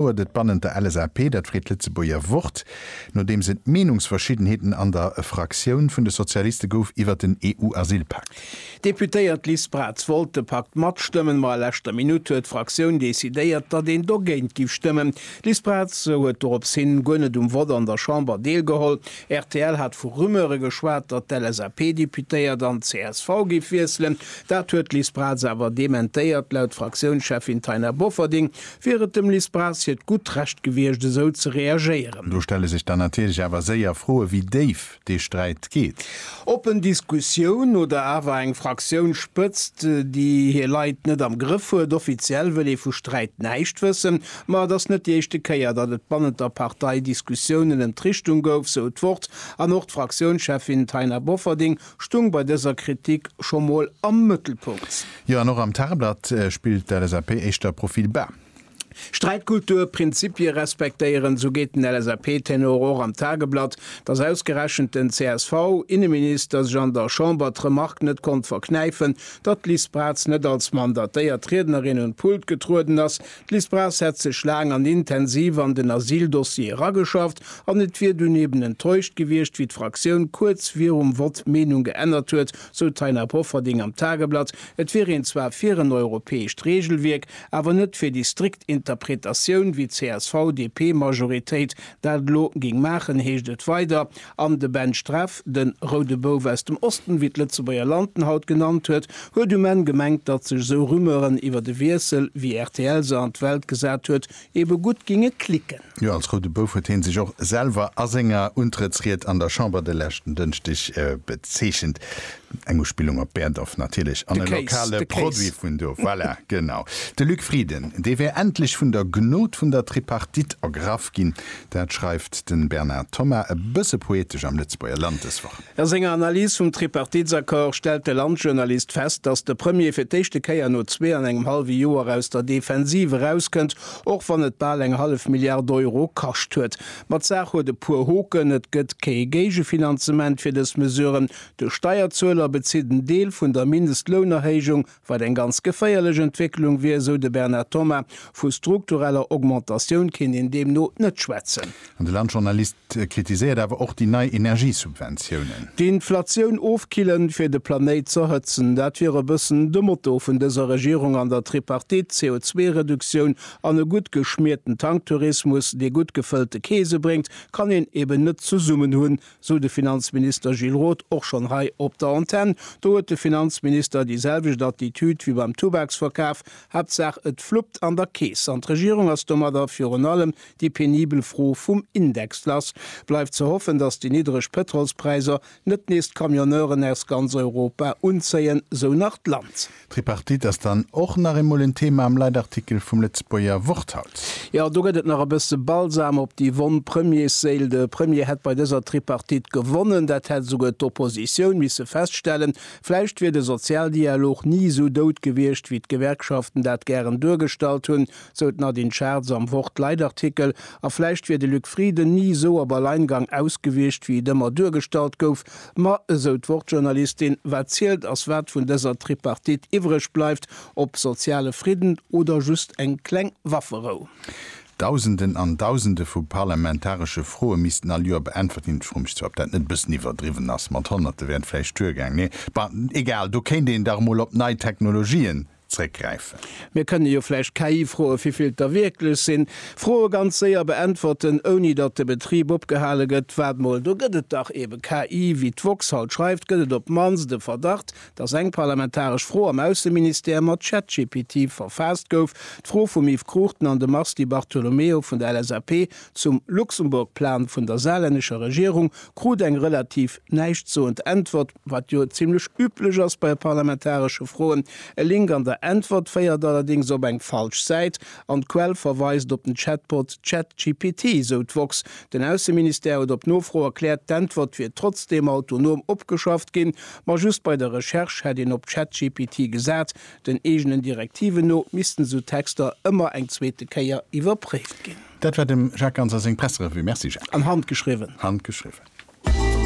huet et bannent der LSAP, dat freet d'Lëtzebuerger Wort, nodeems et Meenungsverschiddenheeten an der Fraktioun vun de Sozialiste gouf iwwert den EU-Asylpakt. D'Deputéiert Liz Braz wollt de Pakt matstëmmen, ma a leschter Minutt huet d'Fraktioun decidéiert, datt een dogéint giff stëmmen. D'Liz Braz huet dorops hin guer net um Vott an der Chamber deelgeholl. Rtl hat vu Rumeure geschwat, datt d'LSAP-Deputéiert an csv giff wiesselen. Dat huet d'Liz Braz awer dementéiert. Laut Fraktiounscheffin Taina Bofferding wier et dem Liz Braz hiert gutt Recht gewiescht, esou ze reagéieren. Do stelle sech dann natierlech awer séier Froen, wéi déif dee Sträit geet. Oppen Diskussioun oder awer eng Fraktiounsspëtzt, déi hir Leit net am Grëff huet? Offiziell wëll ee vu Sträit näischt wëssen, ma et ass net déi éischte Kéier, datt et bannent der Partei Diskussiounen ëm d'Richtung gouf, sou d'Wort. An och d'Fraktiounscheffin Taina Bofferding stung bei dëser Kritik scho mol am Mëttelpunkt. Jo, an och am Tageblatt spillt d'LSAP éischter Profil bas. Sträitkultur, Prinzipie respektéieren, esou geet den LSAP-Tenor och am Tageblatt. Datt ausgerechent den CSV-Inneminister sech an der Chamber d'Remark net konnt verknäifen, datt d'Liz Braz net als mandatéiert Riednerin un d'Pult getrueden ass, D'Liz Braz hätt sech laang an intensiv an den Asyldossier erageschafft an et wier dunn eben enttäuscht gewiescht, wéi d'Fraktioun kuerz virum Vott d'Meenung geännert huet, sou d'Taina Bofferding am Tageblatt. Et wier een zwar fir en europäescht Reegelwierk, awer net fir déi strikt Interpretatioun, wéi d'CSV-DP-Majoritéit dat elo géing maachen, heescht et weider. An de Ben Streff, de Roude Bouf aus dem Osten, wéi d'Lëtzebuerger Land en haut genannt huet, huet um Enn gemengt, datt sech esou Rumeuren iwwert e Wiessel, wéi rtl se an d'Welt gesat huet, ebe gutt ginge klicken. Jo, als Roude Bouf huet hee sech och selwer a senger Untrëttsried an der Chamber de leschten Dënschdeg bezeechent. Eng Uspillung op Berdorf natierlech, an e lokale Produit vun do. Voilà, genau. De Luc Frieden, dee wär endlech vun der Gnod vun der Tripartite ergraff ginn. Dat schreift de Bernard Thomas e bësse poetesch am Lëtzebuerger Land dës Woch. A senger Analys vum Tripartitsaccord stellt de Landjournalist fest, datt de Premier fir d'éischte Kéier no zwee an engem hallwe Joer aus der Defensiv erauskënnt, och wann et bal eng hallef Milliard Euro kascht huet. Ma d'Saach huet e puer Hoken, Et gëtt kee Géigefinanzement fir dës Mesuren, De Steierzueler bezitt en Deel vun der Mindestlounerhéijung, wat eng ganz geféierlech Entwécklung wier, esou de Bernard Thomas. Vu struktureller Augmentatioun kéint een deemno net schwätzen. An de Landjournalist kritiséiert awer och déi nei Energiesubventiounen. D'Inflatioun ofkillen, fir de Planéit z'erhëtzen, dat wier e bëssen de Motto vun dëser Regierung an der Tripartite. CO2-Reduktioun an e gutt geschmierten Tanktourismus, dee gutt gefëllte Keese bréngt, kann een eben net zesummen hunn, sou de Finanzminister Gilles Roth och schonn hei op der Antenn. Do huet de Finanzminister déi selwecht Attitüd wéi beim Tubaksverkaf, Haaptsaach et fluppt an der Keess. An d'Regierung ass domadder virun allem déi penibel Fro vum Index lass. Bleift ze hoffen, datt déi niddreg Pëtrolspräisser net nees d'Camionneuren aus ganz Europa unzéien, sou nach d'Land. D'Tripartite ass dann och nach eemol en Thema am Leitartikel vum Lëtzebuerger Wort haut. Jo, do gëtt et nach e bësse Balsam op déi wonn Premiersséil. De Premier hätt bei dëser Tripartite gewonnen, dat hätt esouguer d'Oppositioun misse feststellen. Vläicht wier de Sozialdialog ni esou dout gewiescht, wéi d'Gewerkschaften dat gären duergestallt hunn, sou d'Nadine Schartz am Wort-Leitartikel. A vläicht wier de Luc Frieden ni esou op Alleingang ausgewiescht, wéi et ëmmer duergestallt gouf. Ma, esou d'Wort-Journalistin, wat zielt ass wat vun dëser Tripartite iwwreg bleift, ob soziale Fridden oder just eng kleng Wafferou. Dausenden an Dausende vu parlamentaresche Froe missten all Joer beäntwert ginn. Ech froe mech zwar, ob dat net e bëssen iwwerdriwwen ass, mat Honnerte wären vläicht duergaang, mee, bah, egal, do kéint een dach emol op nei Technologien zréckgräifen. Mir kënne jo vläicht KI froe vivill der wierklech sinn, Froe ganz séier beäntwerten, ouni datt de Betrib opgehale gëtt. Waart mol, do gëtt et dach eebe KI. Wéi d'woxhalt schreift, gëtt et op d'mannst e Verdacht, datt eng parlamentaresch Fro am Ausseministère mat ChatGPT verfaasst gouf, d'Fro vum Yves Cruchten an dem Mars Di Bartolomeo vun der LSAP zum Luxemburgplan vun der saarlännescher Regierung krut eng relativ näischtsoend Äntwert. wat jo zimlech üblech ass bei parlamentaresche Froen. E Link an der Äntwert féiert allerdéngs op eng falsch Säit an d'Quell verweist op den Chatbot ChatGPT, sou d'woxx. Den Ausseministère huet op Nofro erkläert, d'Äntwert wier trotzdeem autonom opgeschafft ginn, ma just bei der Recherche hätt een op ChatGPT gesat. Den eegenen Direktiven no missten esou Texter ëmmer eng zweete Kéier iwwerpréift ginn. Dat war dem Jacques Ganser seng Presserevue. Merci Jacques. An handgeschriwwen. Handgeschriwwen.